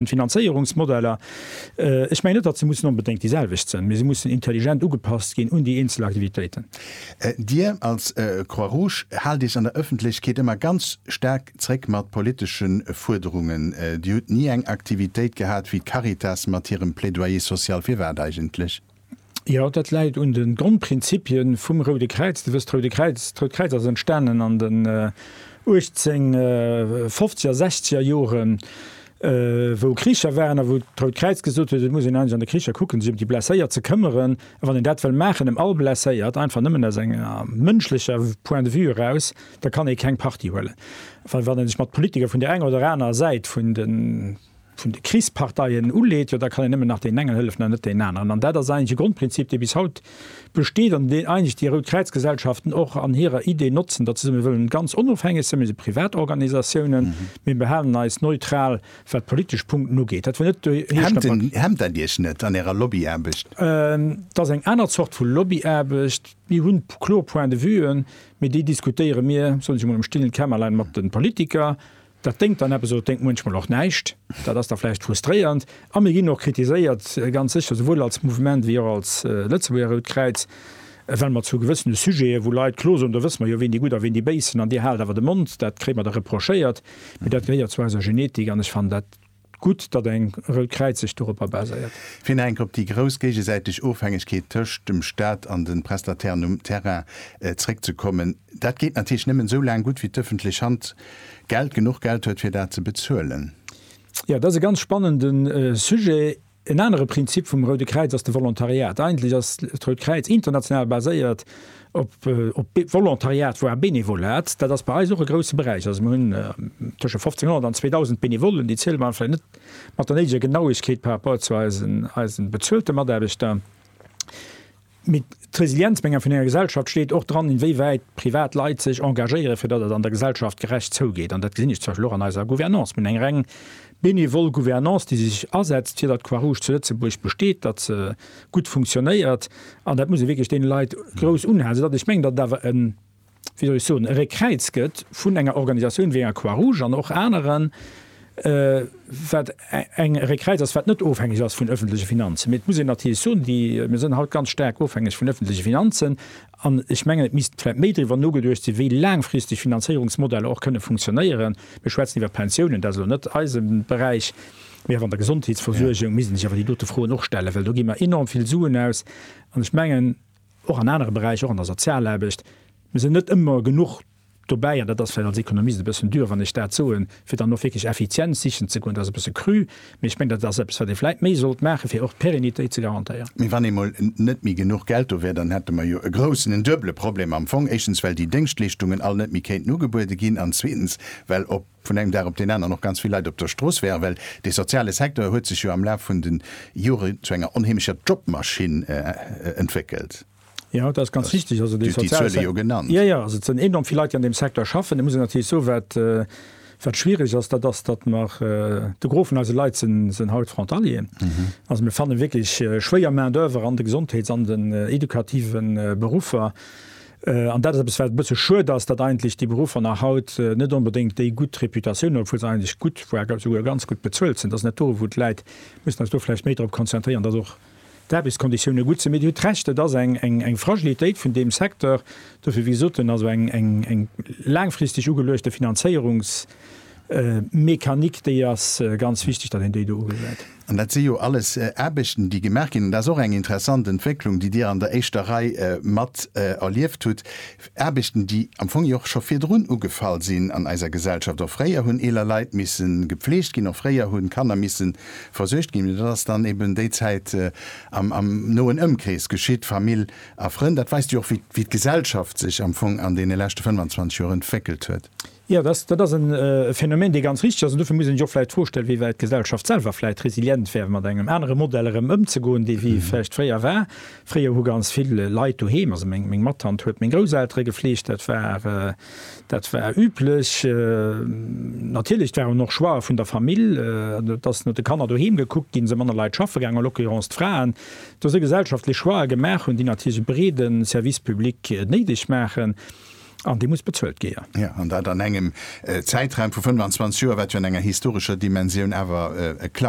D'Finanzéierungsmodeller, ech mengen net, datt se mussen onbedéngt déi selwecht sinn, mee se mussen intelligent ugepasst ginn un déi eenzel Aktivitéiten. Dir als Croix Rouge haalt Iech an der Ëffentlechkeet ëmmer ganz staark zréck mat politesche Fuerderungen. Dir hutt ni eng Aktivitéit gehat wéi d'Caritas mat hirem Plaidoyer social. Firwat eigentlech? Jo, dat läit un de Grondprinzippie vum Roude Kräiz. Dir wësst, d'Roude Kräiz, d'Rout Kräiz ass entstanen an den 1850er, sechzeger Joren, wou Kricher waren a wou d'Rout Kräiz gesot huet, et muss een eigentlech an de Kricher kucken, sech ëm déi Blesséiert ze këmmeren. A wann een dat wëll maachen, ëm all Blesséiert, einfach nëmmen aus engem mënschleche Point de vue eraus, da kann ee keng Parti huelen. Well wann ee sech mat Politiker vun där enger oder anerer Säit vun de. vun de Krichsparteien uleet, jo da kann een nëmmen nach deen engen hëllefen an net deen aneren. An dat ass eigentlech e Grondprinzip, dee bis haut besteet an deen eigentlech déi Rout Kräiz-Gesellschaften och an hirer Idee notzen, datt se soen, mir wëllen ganz onofhängeg sinn, mir si Privatorganisatiounen, mir behalen eis neutral, wat d'politesch Punkten ugeet. Dat wëll net do heescht. Hemmt dat Iech net an Ärer Lobbyaarbecht? Et ass eng aner Zort vu Lobbyaarbecht. Mir hu kloer Point de vuen, mee déi diskutéiere mir, soen ech emol, am stillen Kämmerlein mat de Politiker. Dat déngt dann eppes oder déngt muenchmol och näischt. Dat ass da vläicht frustréierend. A mir ginn och kritiséiert, ganz sécher, souwuel als Mouvement wéi och als Lëtzebuerger Rout Kräiz, well mer zu gewëssene Sujete wou Leit klo soen, do wësse mer jo, ween déi Gutt a ween déi Béis sinn, an Dir haalt awer de Mond, dat kréie mer da reprochéiert. Mee dat gehéiert zu eiser Genetik an ech fannen dat Gutt, datt eng Rëll Kräiz sech doropper baséiert. Fir nach eng Kéier op déi grouss géigesäiteg Ofhängegkeet tëscht dem Staat an de Prestatairen um Terrain zréckzekommen, Dat geet natierlech nëmmen esou laang gutt, wéi d'ëffentlech Hand Geld, genuch Geld huet, fir dat ze bezuelen. Jo, dat ass e ganz spannende Sujet. En anere Prinzip vum Roude Kräiz ass de Volontariat. Eigentlech ass d'Rout Kräiz international baséiert op Volontariat, voire Benevolat. Dat ass bei eis och e grousse Beräich. Also mir hunn tësche 1500 an 2000 Benevollen, déi ziele mer vläicht net mat der néideger Genauegkeet par rapport zu eisen bezuelte Mataarbechter. Mee d'Resilienzplänger vun enger Gesellschaft steet och dran, inwéiwäit privat Leit sech engagéieren, fir datt et an der Gesellschaft gerecht zougeet. An dat gesinn ech zum Beispill och an eiser Gouvernance. Mir hunn eng reng benevol Gouvernance, déi sech asetzt, fir datt d'Croix-Rouge zu Lëtzebuerg besteet, datt se gutt funktionéiert. An dat muss ee wierklech deene Leit grouss unhalen, soudatt ech mengen, datt et awer e. wéi soll ech soen, e Réckkräiz gëtt vun enger Organisatioun wéi enger Croix-Rouge an och aneren, wat eng e Réckkräiz ass, wat net ofhängeg ass vun öffentleche Finanzen. Mee et muss een natierlech soen, déi, mir sinn haut ganz staark ofhängeg vun öffentleche Finanzen. An ech mengen, et misst vläicht méi driwwer nogeduecht sinn, wéi laangfristeg Finanzéierungsmodeller och kënne funktionéieren. Mir schwätzen iwwer d'Pensiounen, dat ass elo net eise Beräich, mee och an der Gesondheetsversuergung misst ee sech awer déi dote Froen och stellen, well do gi mer enorm vill Suen aus an ech mengen, Och an anere Beräicher, och an der Sozialaarbecht, mir sinn net ëmmer genuch dobäi, an dat ass vläicht als Ekonomist e bëssen dür, wann ech dat soen, fir dann och wierklech Effizienz sichen ze goen. Dat ass e bësse cru, mee ech mengen, dat ass eppes, wat ee vläicht méi sollt maachen, fir och d'Pérennitéit ze garantéieren. Mee wann eemol net méi genuch Geld do wär, dann hätte mer jo e groussen, en duebele Problem am Fong, éischtens, well déi Déngschtleeschtungen all net méi kéinten ugebuede ginn an zweetens, well op. vun engem Dag op deen aneren och ganz vill Leit op der Strooss wären, well dee soziale Secteur huet sech jo am Laf vun de Jore zu enger onheemlecher Jobmaschinn entwéckelt. Jo, dat ass ganz richtig. Also dee soziale Secteur, Dir hutt déi Zuele jo genannt. Jo, jo, also et sinn enorm vill Leit, déi an deem Secteur schaffen. Et muss een natierlech soen, wat, wat schwierig ass, dat ass, datt mer, de Gros vun eise Leit sinn haut Frontalier. Also mir fanne wierklech schwéier Main-d'oeuvre an de Gesondheets an den edukativen Beruffer. An dat ass eppes, wat e bësse schued ass, datt eigentlech déi Beruffer nach haut net onbedéngt déi gutt Reputatioun hunn, obwuel se eigentlech gutt, voire ga souguer ganz gutt bezuelt sinn. Dat ass net do, wou d'Leit mussen eis do vläicht méi drop konzentrieren, datt och d'Aarbechtskonditioune gutt sinn. Mee Dir hutt Recht, et ass eng Fragilitéit vun deem Secteur. Dofir, wéi gesot, hunn also eng laangfristeg ugeluechte Finanzéierungsmechanik, déi ass ganz wichteg, datt een déi do ugesäit. An dat si jo alles Aarbechten, déi gemaach ginn, an dat ass och eng interessant Entwécklung, déi Dir an der éischter Rei mat erlieft hutt, Aarbechten, déi am Fong jo och scho virdrun ugefall sinn an eiser Gesellschaft. Och fréier hunn eeler Leit misse gepflegt ginn, och fréier hunn d'Kanner misse versuergt ginn, mee dat ass dann eben déi Zäit am noen Ëmkrees geschitt, Famill a Frënn. Dat weist jo och, wéi d'Gesellschaft sech am Fong an deene leschte 25 Joer entwéckelt huet. Jo, dat, dat ass e Phänomen, dee ganz richteg ass. An dofir muss een sech och vläicht d'Fro stellen, wéiwäit d'Gesellschaft selwer vläicht resilient wär, fir mat engem anere Modell erëm ëmzegoen, dee wéi vläicht fréier war. Fréier hu ganz vill Leit doheem, also meng, meng Mattant huet meng Grousseltere gefleegt, dat war, dat war üblech. Natierlech, et war en Choix vun der Famill, dass no de Kanner doheem gekuckt ginn, se manner Leit schaffe gaangen, à l'occurrence d'Fraen, dass se gesellschaftlech Choixë gemaach hunn, déi natierlech e breede Service public néideg maachen. An déi muss bezuelt géa. Jo, an dat an engem Zäitraum vu 25 Joer, wat jo an enger historescher Dimensioun awer e Klacks.